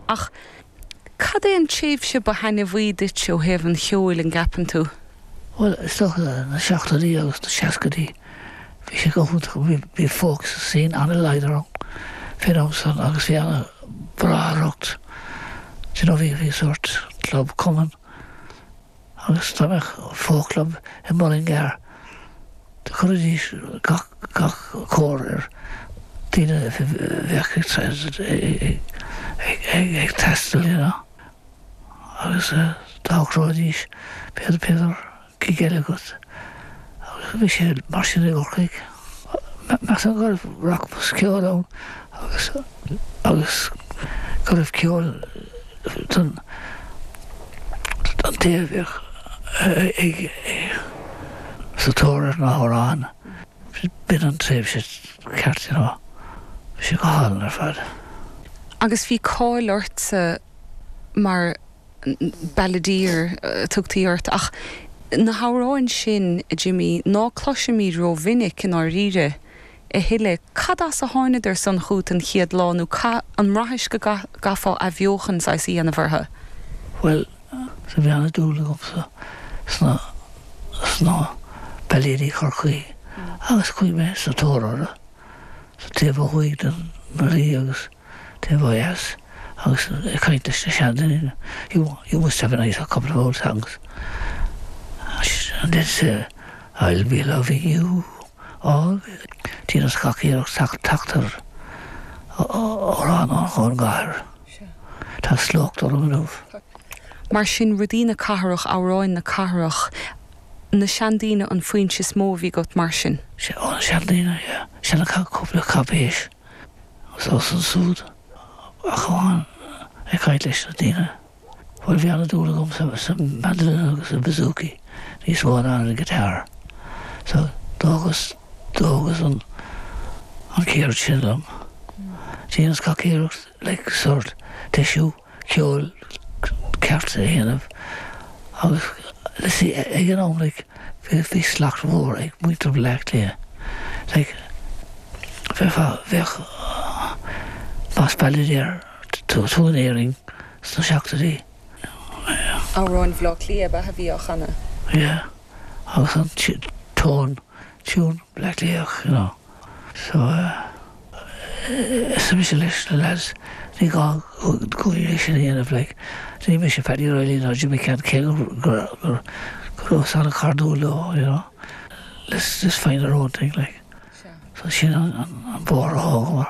Ach cad é an tréimhse ba thaitneamhaí duit ó thaobh an cheoil, an gceapann tú? Bhuel, is dócha na seachtóidí agus na seascaidí. Bhí sé go hiontach. Bhí, bhí folk scene ana-láidir fén am san agus bhí ana bráithreacht, d'you know, bhí, bhí sórt club cumann, Agus dá mbeadh folk club i Mullingar, do chuirfidís gach cóir ar daoine a bheadh ag taisteal ann agus d'fhogróidís b'fhéidir gig eile agat. Agus bhí sé mar sin i gCorcaigh. Measaimse go raibh rachmas ceoil ann agus go raibh ceol don don té a bheadh ag sa tóir ar na hamhráin. B'in an tréimhse ceart, you know. Bhí sé go hálainn ar fad. Agus bhí cáil ortsa mar Balladeer a tugtaí ort, ach na hamhráin sin, a Jimí, ná cloisimid rómhinic, i ndáiríre, a thuilleadh. Cad as a tháingadar san chughat an chéad lá, nó cá, an mbraithís go gcaithfeá athbheochan saghas a dhéanamh orthu? Bhuel, do bhí an-dúil agamsa sna, sna bailéidí Chorcaí, agus chuaigh mé sa tóir orthu, sa taobh ó thuaidh den, den Laoi agus, taobh ó dheas agus ag caint leis na seandaoine, You must have a nice a couple of old songs and they'd say, I'll be loving you always. Dheineas gach iarracht teacht ar amhráin ón gcathair. Tá slócht orm inniu. Mar sin, rudaí na cathrach, amhráin na cathrach, na seandaoine an foinse is mó a bhí agat mar sin? Sea, ó na seandaoine, yeah. Sea, na cúpla cáipéis. anso is ansúd, a Choilm, ag caint leis na daoine. Bhuel, bhí an-dúil agam sa mandolin agus sa bouzouki, níos mó ná an guitar. So, d'fhágas, d'fhágas an, an ceird sin liom. Dheineas gach iarracht, like, sórt, deisiú. ceoil ceart a dhéanamh agus like ag an am like bhí slacht mhór ag muintir Bhleá Cliath like bheadh bheadh más balladeer tú in Éirinn sna seachtóidí yeah. Amhráin Bhleá Cliath a b'eadh a bhí á chanadh. Yeah agus an tone, tiúin Bhleá Cliath you know. So arsa mise leis na lads, ní gá dhom é sin a dhéanamh, like, ní mise Paddy Reilly ná Jim McCann cé go rabhas ana chairdiúil leo, you know, let's just find our own thing, like. So sin an bóthar a thógamar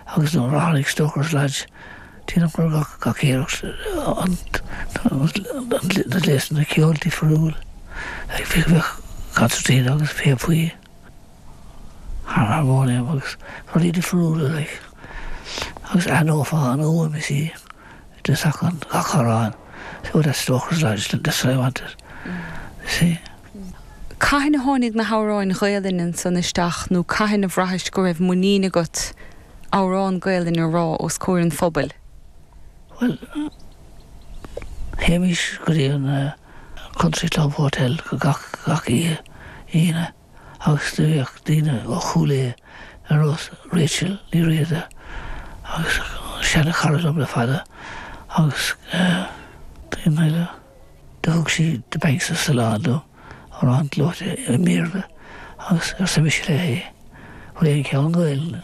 agus nuair a tháinig Stoker's Lodge, dheineamar gach iarracht na gléasanna ceoil difriúil, like bhíodh concertina agus píopaí, Thar thar bharr é agus rudaí difriúla, like. Agus aithneofá an fhuaim is í de sacan gach amhrán. See what that Stoker's Lodge did, that's what I wanted. See? Cathain a tháinig na hamhráin Ghaelainne ansan isteach nó cathain a bhraithis go raibh muinín agat amhrán Gaelainne a rá os comhair an phobail? Bhuel, théimís go dtí an Country Club Hotel gach oíche Aoine. agus do bhíodh daoine ó Chúil Aodha ar nós Rachel Ní Riada agus seana chara dom le fada agus daoine eile. Do thug sí The Banks of Sullane dom, amhrán gleoite i mBéarla agus arsa mise léi, Bhfuil aon cheann Gaelainne?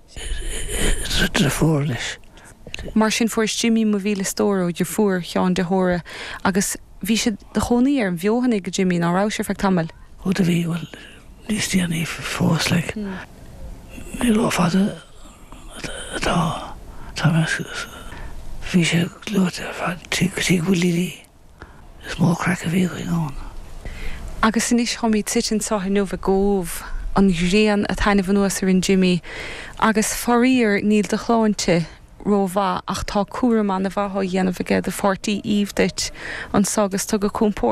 Is de phór leis. Mar sin fuaireas Jimí mo mhíle stór ó do fuair ó Sheán de hÓra agus bhís id chónaí ar an bhFeothanaigh Jimí ná rabhais ar feadh tamaill. Ó do bhí, bhuel, níos déanaí fós, like, ní ró fada atá, tá mé, bhí sé gleoite ar fad, tigh Willie Lee. Is mór craic a bhíodh againn ann. Agus anois táimid suite anseo inniu i gCóbh, an ghrian a' taitneamh anuas orainn Jimmy, agus faraor níl do shláinte ró-mhaith ach tá cúram ana mhaith á dhéanamh aige do pháirtí Eve duit anseo agus tá gach compord